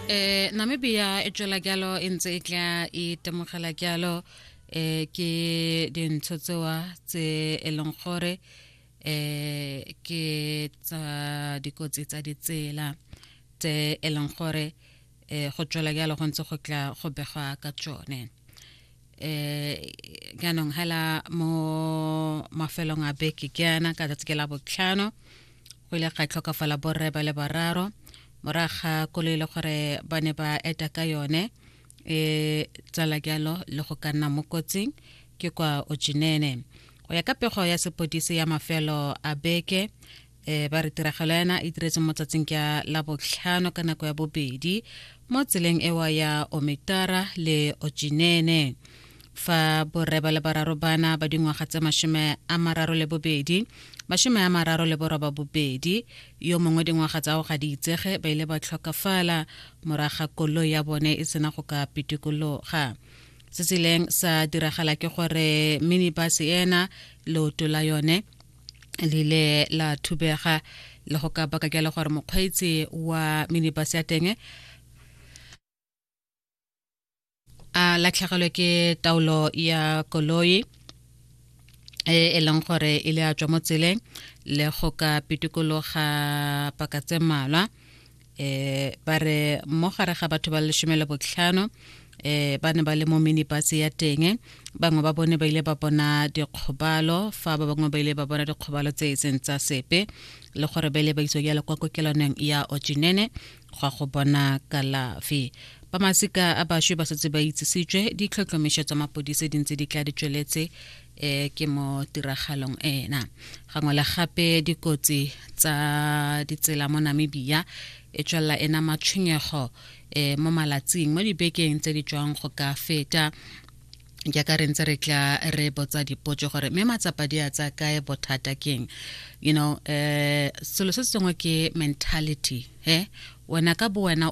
eh namibia e tswela jalo e ntse e tla itemogela e jalo eh ke dintsho tsewa tse e leng gore eh ke tsa dikotsi tsa ditsela tse e leng gore eh go tswela jalo go ntse go tla go begwa ka tsone eh jaanong hela mo mafelong a beke ke yana ka tsatsi ke la botlhano o ile ga tlhokafala borre ba le bararo morago ga koloi le gore ba ne ba eta ka yone e tsala jalo le go ka nna mo kotsing ke kwa ojinene go ya ka pego ya sepodisi ya mafelo a beke e ba re tiragalo yana e diretse mo tsatsing ka la botlhano ka nako ya bobedi mo tseleng ewa ya omitara le ojinene fa borre ba le bararo bana ba dingwaga tse mashome a mararo le bobedi mashome a mararo le boroba bobedi yo mongwe dingwaga tsa go ga di itsege ba ile ba tlhokafala moraga kolo ya bone e sena go ka pitikologa se se ileng sa diragala ke gore minibus ena leoto la yone le ile la thubega le go ka baka ke le gore mokgweetsi wa minibus ya teng a latlhegelwe ke taolo ya koloi e e leng gore e le a tswa mo tseleng le go ka pitikologa paka tse mmalwa um ba re mo gare ga batho ba lesome le botlhano eh ba ne ba le mo minibus ya teng bangwe ba bone ba ile ba bona dikgobalo fa ba bangwe ba ile ba bona dikgobalo tse e seng tsa sepe le gore ba ile ba iswa jalo kwa kokelwaneng ya ocinene go go bona kalafi ba masika a baswe ba setse ba itsisitswe ditlhotlhomišo tsa mapodise di ntse di tla di tsweletse um ke mo tiragalong ena gangwe le gape dikotsi tsa ditsela mo namibia e tswelela ena matshwenyego um mo malatsing mo dibekeng tse di tswang go ka feta ke ka re ntse re tla re botsa dipotso gore mme matsapa di a tsa kae bothata keng you know um selo se sengwe ke mentality he wena ka bo wena o